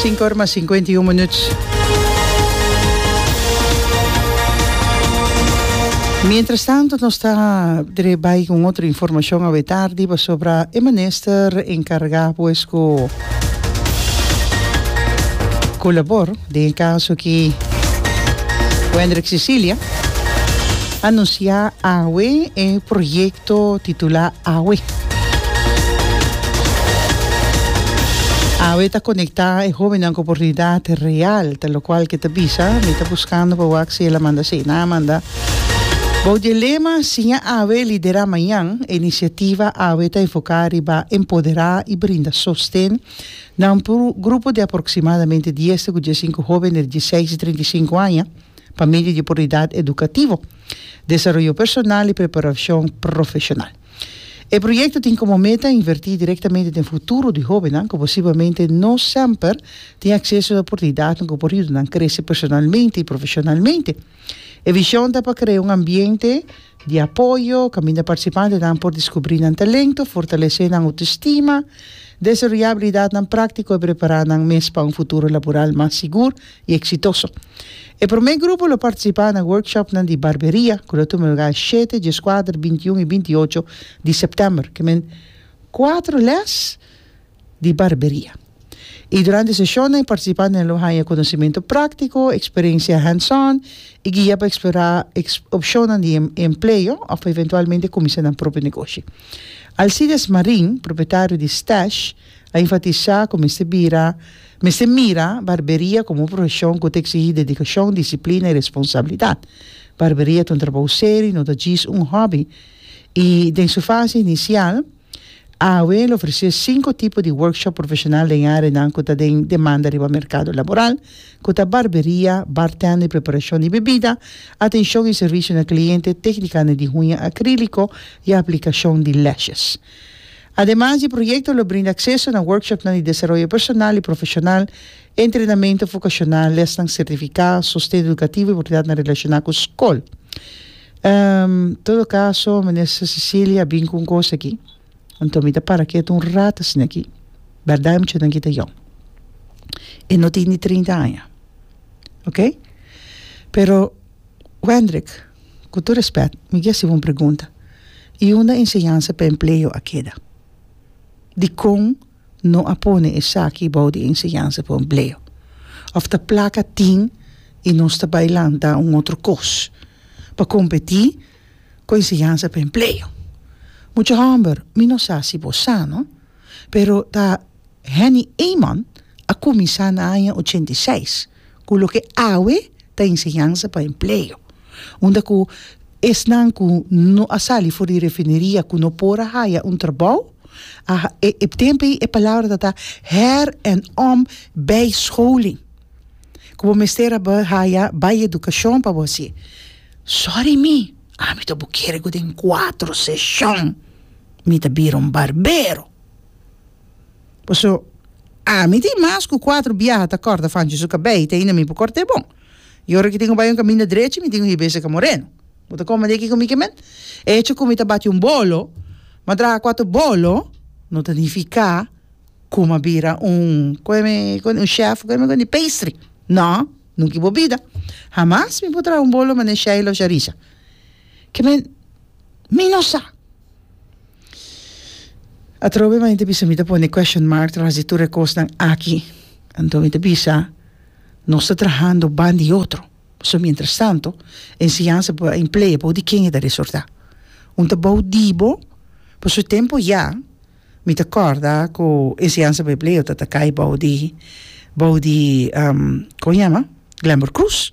Sinku or mas sinkuenta i un minuut. Mientras tanto nos ta dret bai ku un otro informashon awe tardi pasobra e minister enkargá pues ku ku labor. Den e kaso ki Wendrick Cecilia anunsiá awe e proyekto titulá Awe. Awe ta konektá e hóbennan ku oportunidat real ta lokual ke ta bisa, Mi ta buskando pa wak si el a manda asina, nan a manda. Bou di e lema Siña Awe, Liderá Mañan, e inisiativa Awe ta enfoká riba empoderá i brinda sosten Na un grupo di aproximadamente dies te cu diescinco hoben der di seis te treinta i cinco aña, pa medio di oportunidad educativo, desaroyo personal y preparacion profesional. E proyecto tin como meta inverti directamente den futuro di hobennan cu posiblemente no semper tin acceso na oportunidadnan cu por yuda nan crece personalmente y profesionalmente. E vision ta pa crea un ambiente. Di apoyo, caminda participantenan por descubri nan talento, fortalece nan autoestima, desaroya habilidadnan practico y prepara nan mes pa un futuro laboral mas sigur y exitoso. E prome grupo lo participa na workshopnan di barberia cu lo tuma lugar e shete, diescuater, bintiun y bintiocho di september. Kimen cuatro les. di barberia. I durante e seshonnan e partisipantnan lo haña konosementu práktiko, eksperensia hands-on i guia pa eksplorá opshonnan di empleo òf eventualmente kuminsá nan propio negoshi. Alcides Marin, propietario di Stash, a enfatisá ku mester bira mester mira barberia komo un profeshon ku ta eksigí dedikashon, disiplina i responsabilidat. Barberia ta un trabou seri, no ta djis un hòbi. I den su fase inisial. AAW lo ofresé sinku tipo di workshop profeshonal den areanan ku ta den demanda riba merkado laboral, ku ta barberia, bartender, preparashon di bebida, atenshon i servisio na kliente, teknikane di huña akríliko i aplikashon di lashes. Ademas, e proyekto lo brinda akseso na workshopnan di desaroyo personal i profeshonal E entrenamentu fokashonal, lesnan sertifiká, sosten edukativo i oportunidat na relashoná ku skol. Ehm, todo kaso, Minister Cecilia a bin ku un kos aki. Anto mi ta para kiet un rata asina aki. Bèrdat e muchanan aki ta yòn. E no tin ni trinta aña. Oke? Pero, Wendrick, ku tur rèspèt, mi ke hasiba un pregunta. I unda enseñansa pa empleo a keda? Dikon no a pone esaki bou di enseñansa pa empleo. Of ta plaka tin i nos ta bai lanta un otro kos pa kompetí ku enseñansa pa empleo. Mucha hòmber, mi no sa si bo sa no, pero ta Henny Eman a kuminsá na aña ochenta i seis. Cu loke awe ta enseñansa pa empleo, unda cu esnan cu no a sali for di refineria cu no por a haya un trabao, a e tempo ey e palabra ta ta her en om bijscholing, cu bo mester a haya bijeducacion pa bo haci. Sorry mi, ami ta bo kere cu den cuatro seshon mi ta bira un barbero. Paso, ami tin mas cu cuatro biaha ta corta fanchi su cabei te ainda mi por corta e bon. Y ora ki tin cu bay un caminda drechi mi tin cu hiba e seca moreno. Bo ta comende aki cu mi kimen? E hecho cu mi ta bati un bolo, ma draha cuatro bolo, no ta nifica cu m'a bira un coe mi cu un chef coe mi cu di pastry. No, nunca i bo bida. Hamas mi por traha un bolo mane Sheila of Sharissa. Kimen Mi no sa. Atrobe manera ta bisa mi ta pone question mark tras di tur e kosnan aki. Anto mi ta bisa nos ta trahando ban di otro. So mientras tanto enseñansa por a emplee bou di ken e ta resorta. Un ta bou di bo, pa su tempo ya mi ta corda cu enseñansa por empleo ta ta cay bou di bou di con a yama Glenber Cruz.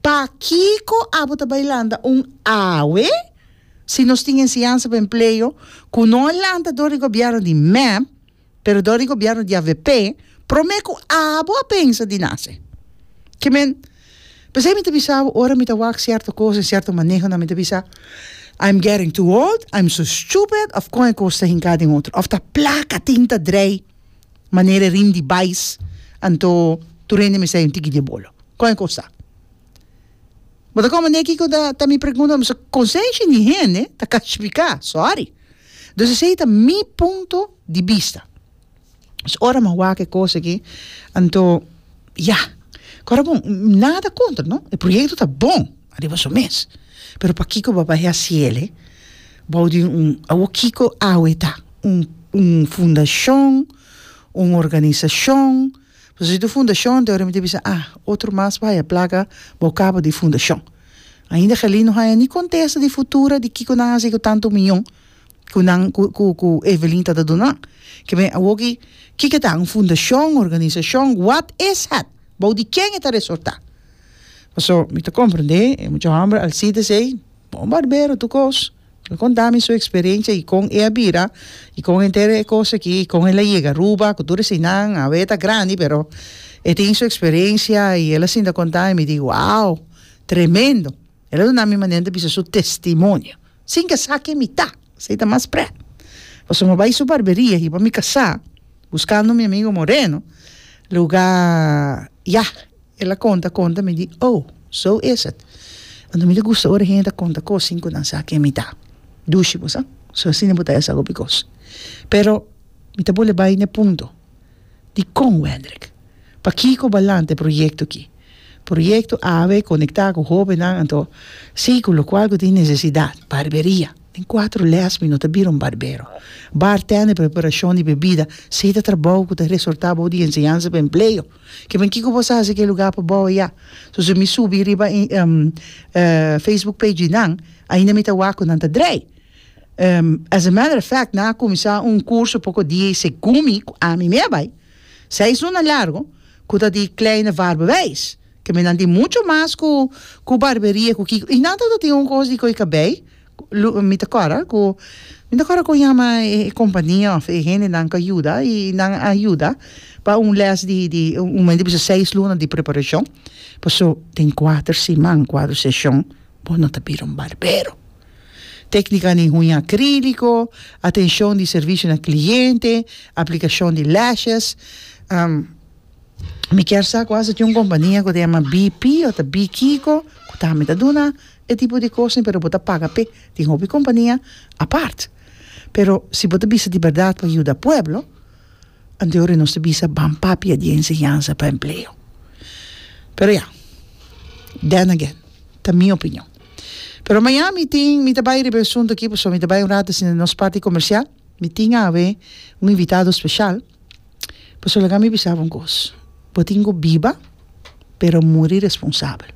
Pakiko abo ta bai lanta un awe? Si nos tin enseñansa pa empleo ku no a lanta dor di gobièrnu di mep, pero dor di gobièrnu di avp, promé ku abo a pensa di nase. Ke men? P'esei mi ta bisa bo ora mi ta wak sierto kos den sierto manehonan mi ta bisa, I'm getting too old, I'm so stupid of kon e kos ta hinká den otro of ta plaka tin ta drei manera e rim di bais anto tur hende mester un tiki di e bolo. Kon e kosa? Bo ta komende kiko ta ta mi pregunta? Boso konsenshi di hende ta kalsifiká. Sòri. Dus esei ta mi punto di bista. So ora mi a wak e kos aki anto ya, kòrda bon, nada kontra, no, e proyekto ta bon ariba su mes, pero pakiko bo a bai hasi el, e? Bou di un, awor kiko awe ta? Un, un fundashon? Un organisashon? Pasobra si tu fundashon te orinta bisa, ah, otro mas por haya plaga, bo kaba di fundashon. Ainda Gelin no haya ni kontesta di Futura di kiko nan hasi ku tantu miyon ku nan ku ku ku Evelin ta ta duna nan. Kibe awoki kiko ta un fundashon, organisashon, what is het? Bou di ken e ta resortá? Paso mi ta komprendé e mucha hòmber Alcides ei, bon barbero tur kos. El konta mi su eksperensia i kon e a bira i kon henter e kos aki i kon el a yega Aruba ku tur eseinan. Awe e ta grandi pero e tin su eksperensia i el a sinta konta i mi di wow tremendo. El a duna mi manera di bisa su testimonio sin ke sa ken mi ta, esei ta mas prè. Pasobra mi a bai su barberia aki pa mi kasa buskando mi amigo Moreno luga yah. El a konta konta mi di, Oh, so is it. Anto mi ta gusta ora hende ta konta kos sin ku nan sa ken mi ta. Dushi bo sa. So asina bo ta hasi hopi kos. Pero mi ta bole bai na e punto. Dikon, Wendrik? Pakiko balante proyekto ki? Proyekto awe konektá ku hóbennan, anto si ku lokual ku tin nesesidat. Barberia. Den kuatro lès mi no ta bira un barbero. Bartender, preparashon di bebida, si ta trabou ku ta resortá abou di enseñansa pa empleo. Kiman kiko bo sa hasi ke luga pa bou eya? So si mi subi riba Facebook page di nan ainda mi ta wak ku nan ta drei. As a matter of fact nan a kuminsá un kurso poko dia i segun mi ku ami mei a bai seis luna largu ku ta di Kleine Vaarbewijs ke mi nan tin mucho mas ku barberia ku kiko i nan tabata tin un kos di ko'i kabei Mi ta kòrda ku, mi ta kòrda ku yama e kompania òf e hendenan ku yuda i nan a yuda pa un lès di di un moment di bisa seis luna di preparashon. Paso den kuater siman, kuater seshon bo no ta bira un barbero. Teknika di huña akríliko, atenshon di servisio na kliente, aplikashon di lèshes. Mi kier sa ku as a tin un kompania ku ta yama BP ota bikiko ku tambe ta duna E tipo di kos pero bo ta paga p'e. Tin hopi kompania apart. Pero si bo ta bisa di bèrdat pa yuda pueblo, anteori nos ta bisa ban papia di e enseñansa pa empleo. Pero ya, then again, ta mi opinion. Pero Miami tin, mi ta bai riba e asuntu aki pasobra mi ta bai un rato asina nos parti komersial. Mi tin awe un invitado special, pasobra ke ami bisa bo un kos, bo tin ku biba pero muri responsabel.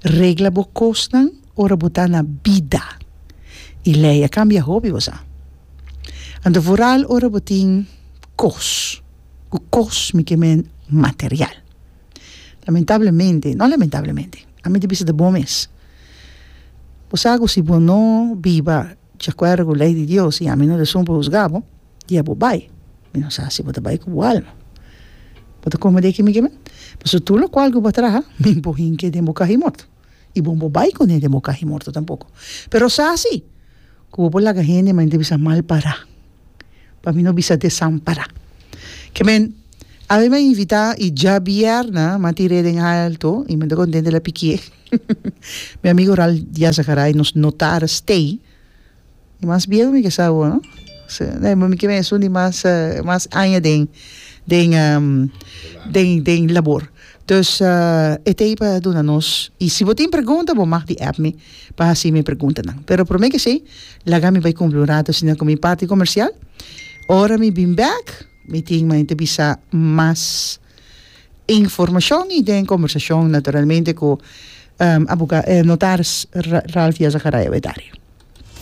Regla bo kosnan ora bo ta na bida y ley a cambia hopi bosa. Anto vooral ora bo tin kos, ku kos mi ke men material. Lamentablemente, no lamentablemente, ami ta bisa ta bo mes, bo sa ku si bo no biba. Di akuerdo ku lei di Dios i ami no ta sumpa husgá bo, dia bo bai. Mi no sa si bo ta bai ku bo alma. Bo ta kome di e kimi ke mi? Pasobra tur lokual ku bo a traha, mi bo hink'é den bo kahi morto, i bo no por bai kun'é den bo kahi morto tampoko. Pero sa si, ku bo por laga hende manera di bisa malpará. pa mi no bisa desampará ke men a mi me invitá i djabièrnè m'a tir'é den alto i men ta kontente la pikié mi amigo Ralf Diaz-Zakaray nos notar stay i mas bien mi ke sa awor no mi ke esun di mas mas aña den den den den labor dus e t'ei pa duna nos i si bo tin pregunta bo mag di app mi. pa hasi mi preguntanan. Pero prome kesei, laga mi bai kumpli un ratu asina ku mi parti komersial. Ora mi bin bèk, mi tin maña ta bisa mas informashon i den kombersashon naturalmente ku abogá, notaris Ralph Diaz Acaraya Wetaria.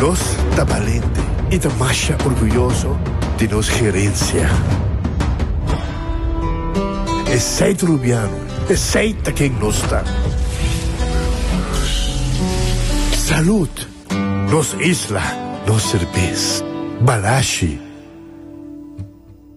Nos ta balente i ta masha orguyoso di nos herensia. Esei ta Rubiano, esei ta ken nos ta. Salud! Nos isla, nos serbes. Balashi!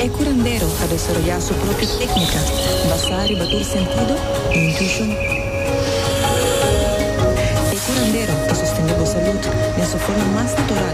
E curandero a desoroyá su propio téknika basá riba tur sentido i intuishon. E curandero ta sostendé bo salud den su forma mas natural.